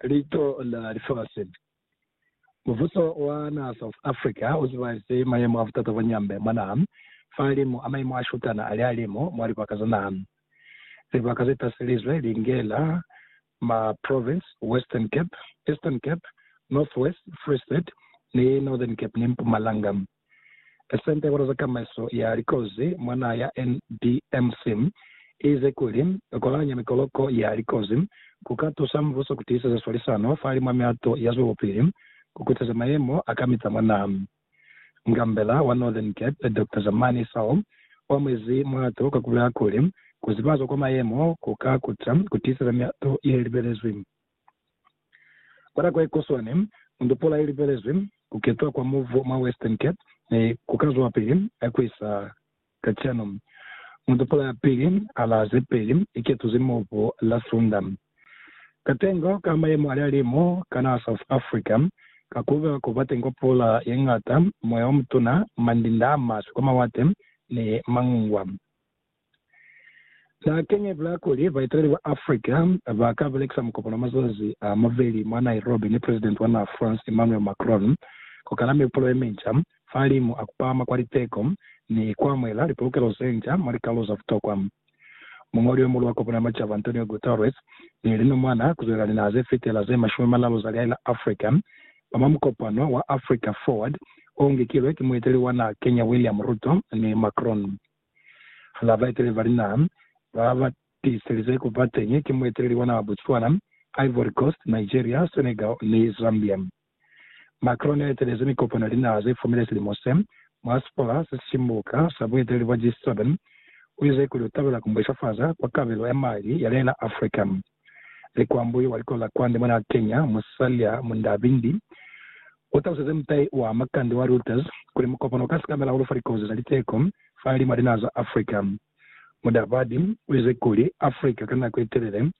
Lico la Lifasi. Mubuso wa naha South Africa u zibaezi mayemo a butata bwa nyambe mwa naha, fahalimu a mayemo a shutana a lihalimu mwa libaka za naha. Libaka ze taselizwe li ngela ma province, Western Cape, Eastern Cape, North West, Free State, ni Northern Cape ni Mpumalanga. Senta ya Kutaza Tamaiso ya Likozi mwa naha ya NDMC iize kuli, ku kolanya mikoloko ya likozi ku ka tusa mbuso ku tiiseza swalisano fahali mwa mihato ya zwelopili ku kuteza mayemo a kamita mwa naha. Ngambela wa Northern Cape, Doctor Zamani Isao, u amuezi muhato ka ku bulela kuli, ku zibazwa kwa mayemo ku ka kuta ku tiiseza mihato ye libelezwi. Kwa nako ye kuswani, Mundupula i lipelezwi ku ketwa kwa muvu mwa Western Cape mi ku ka zwapili ku isa ka cwanu. Mundupula ya pili a la ze peli i ketuzi muvu la Sunda. Katengo ka mayemo a lihalimu ka naha South Africa ka ku ba ku ba teñi kwa pula ye ñata, moya o mutuna, mandinda a maswe kwa mawate, ni mangungwa. Za keñe bula kuli baeteleli ba Africa ba ka belekisa mukopano wa mazazi a mabeli mwa Nairobi ni Presidenti wa naha France Emmanuel Macron ku kala mihupulo ye minca fahalimu a ku pahama kwa liteko ni ku amuhela lipolokelo ze nca mwa likalolo za butokwa. Muñoli yo muhulu wa Kopano ya Macaba Antonio Guterres ni linomwana ku zwelela linaha ze fitela ze mashumi manalu za lihae la Africa ba mwa mukopano wa Africa Forward o ngikilwe ki mueteli wa naha keñe William Ruto ni Macron. Hala baeteleli ba linaha ba ba tiiselize ku ba teñi ki mueteleli wa naha Botswana, Ivory Coast, Nigeria, Senegal ni Zambia. Macron ne a etelezi mikopano ya linaha ze fumile silimo se mwa Sipola se Sibuka sa Bueteleli bwa G7. U ize kuli u tabela ku mbweshafaza kwa kabelo ya mali ya lena Africa. Likwambu wa likola kwande mona a kenya musali ya munda bindi. U taluseze mutai wa makande wa Reuters kuli mukopano u ka sikamela hahulu fa likozi za liteko fa lima linaha za Africa. Mudabadi u ize kuli, Africa ka nako ye telele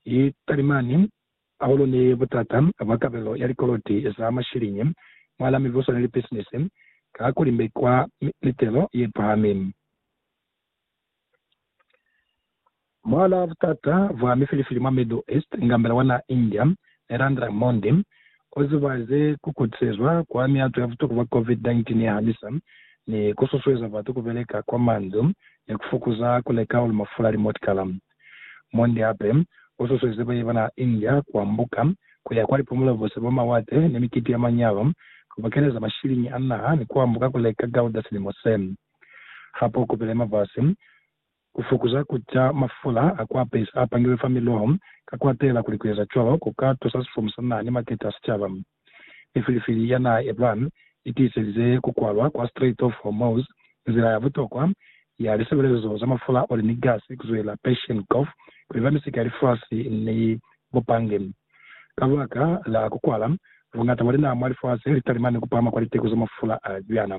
i talimani hahulu ni butata bwa kabelo ya likoloti za mashilinyi mwahal'a mibuso ni lipisinisi, ka ha ku limbekwa mitelo ye pahami. Mwala wa butata bwa mifilifili mwa Middle East inga mbela wa naha India, Narendra Modi, o zibahaze ku kutisezwa kwa miato ya butuku bwa COVID-19 ye hanisa, ni ku susueza batu ku beleka kwa mandu ni ku fokuza ku leka hahulu mafula a limotikala. Modi hape u susueze baye ba naha India ku ambuka ku ya kwa lipumulo bose bwa mawate ni mikiti ya manyalo, ku bokeleza mashiliñi a naha ni ku ambuka ku leka gauda silimo se. Hape u kupile mavasi ku fukuza ku ca mafula a ku apesa a pangilwe fa miloho, ka ku atela kuli ku eza cwalo ku ka tusa sifumu sa naa ni makete a sicaba. Mifilifili ya naa Iran i tiiselize ku kwalwa kwa Strait of Hormuz, nzila ya butokwa ya lisebelezo za mafula, oli ni gasi ku zwela Persian Gulf ku iba misika ya lifasi ni bupange. Kabaka la ku kwala, buñata bwa linaa mwa lifasi li talima ni ku pahama kwa liteko za mafula a cwana.